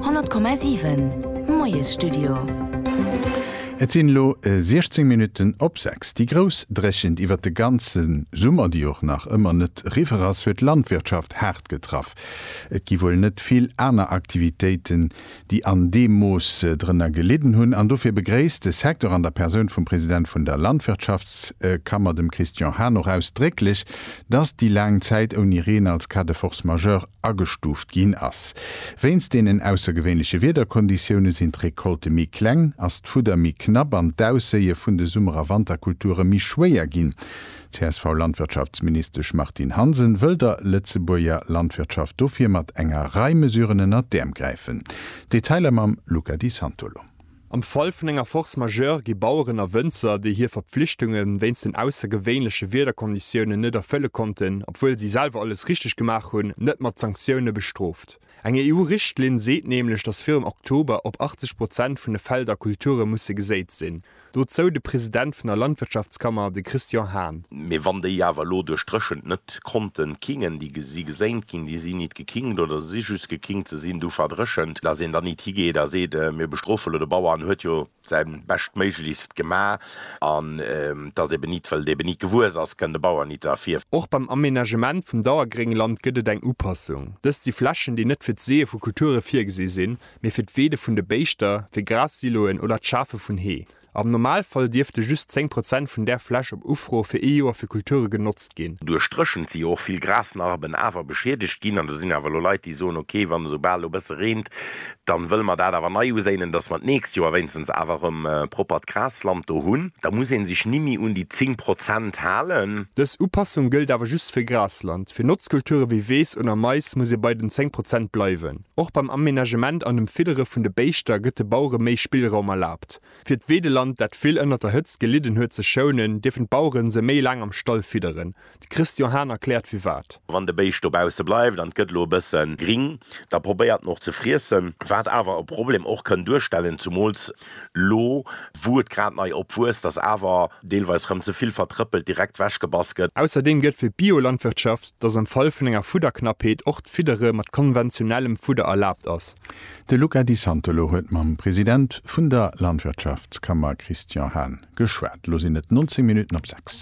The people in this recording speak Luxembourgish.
100,7 Moiesstudio. Et sinn elo 16 Minutten op 6. Déi grouss Dréchent iwwert de ganze Summer, déi och nach ëmmer net riwwer ass, huet d'Landwirtschaft haart getraff. Et gi wuel net vill aner Aktivitéiten, déi an deem Mooss drënner gelidden hunn. An dofir begréisst de Secteur an der Persoun vum President vun der Landwirtschaftskammer, dem Christian Hahn, och ausdrécklech, datt déi laang Zäit ouni Reen als Cas de force majeure agestuuft ginn ass. Wéinst deenen aussergewéinleche Wiederkonditioune sinn d'Recolte méi kleng, ass d'Fudder méi knapp an d'Ausséie vun de Summer a Wanterkulture méi schwéier ginn. D'CSV-Landwirtschaftsministesch Martine Hansen wëll der Lëtzebuerger Landwirtschaft dofir mat enger Rei Mesuren ënner d'Äerm gräifen. Detailer mam Luca Di Santolo. Am Fall vun enger Force majeure gi Baueren a Wënzer, déi hir Verpflichtunge wéinst den aussergewéinleche Wiederkonditiounen net erfëlle konnten, obwuel si selwer alles richteg gemaach hunn, net mat Sanktioune bestrooft. Eng EU-Richtlinn seet nämlech, datt virum Oktober op 80 Prozent vun de Felder Kulture musse geséit sinn. Dozou de President vun der Landwirtschaftskammer, de Christian Hahn. Mee wann déi awer elo duerch d'Dréchent net D'Konten kingen, déi si gesaint ginn, déi sinn nit gekingt oder se si just gekingt, se sinn du verdréchent, dass een dann nit higeet a seet, mir bestrofe lo de Bauer, en huet jo säi Beschtméiglechst gemaach, an dass eben nit, well et eben nit gewuess ass, kënn de Bauer nit derfir. Och beim Amenagement vum Dauergréngland gëtt et eng Upassung. Dëst si Flächen, déi net fir d'Seeë vu Kulture virgesi sinn, mee fir d'Weede vun de Béischter, fir Gras-Siloen oder d'Schafe vun Hee. Am Normalfall dierfte just 10 Prozent vun där Fläch op Ufro fir ee Joer fir Kulture genotzt ginn. Duerch d'Dréchent si jo och vill Grasnarben awer beschiedegt ginn an do sinn awer elo Leit, déi soen, ok, wann esou bal elo e bësse reent, da wëlle mer dat awer nei uséinen, dass mer d'nächst Joer wéinstens awer erëm proppert Grasland do hunn. Da muss ee sech nimmi un déi 10 Prozent halen. Dës Upassung gëllt awer just fir Grasland. Fir Notzkulture wéi Weess oder Mais muss ee bei den 10 Prozent bleiwen. Och beim Amenagement an dem Fiddere vun de Béischter gëtt de Bauere méi Spillraum erlaabt. Fir d'Weedeland, dat vill ënnert der Hëtzt gelidden huet, ze schounen, dierfen d'Bauere se méi laang am Stall fidderen. De Christian Hahn erkläert firwat. Wann de Béischt dobausse bleift an et gëtt elo e bësse gring, da probéiert en och ze friessen, wat awer e Problem och kënn duerstellen, zumools elo wou et grad nei opwuesst, datt awer deelweis rëm ze vill vertrëppelt direkt wechgebass gëtt. Ausserdeem gëtt fir d'Biolandwirtschaft dass am Fall vun enger Fudderknappheet och d'Fiddere mat konventionellem Fudder erlaabt ass. De Luca Di Santolo huet mam President vun der Landwirtschaftskammer Christian Hahn geschwat. Elo sinn et 19 Minutten op 6.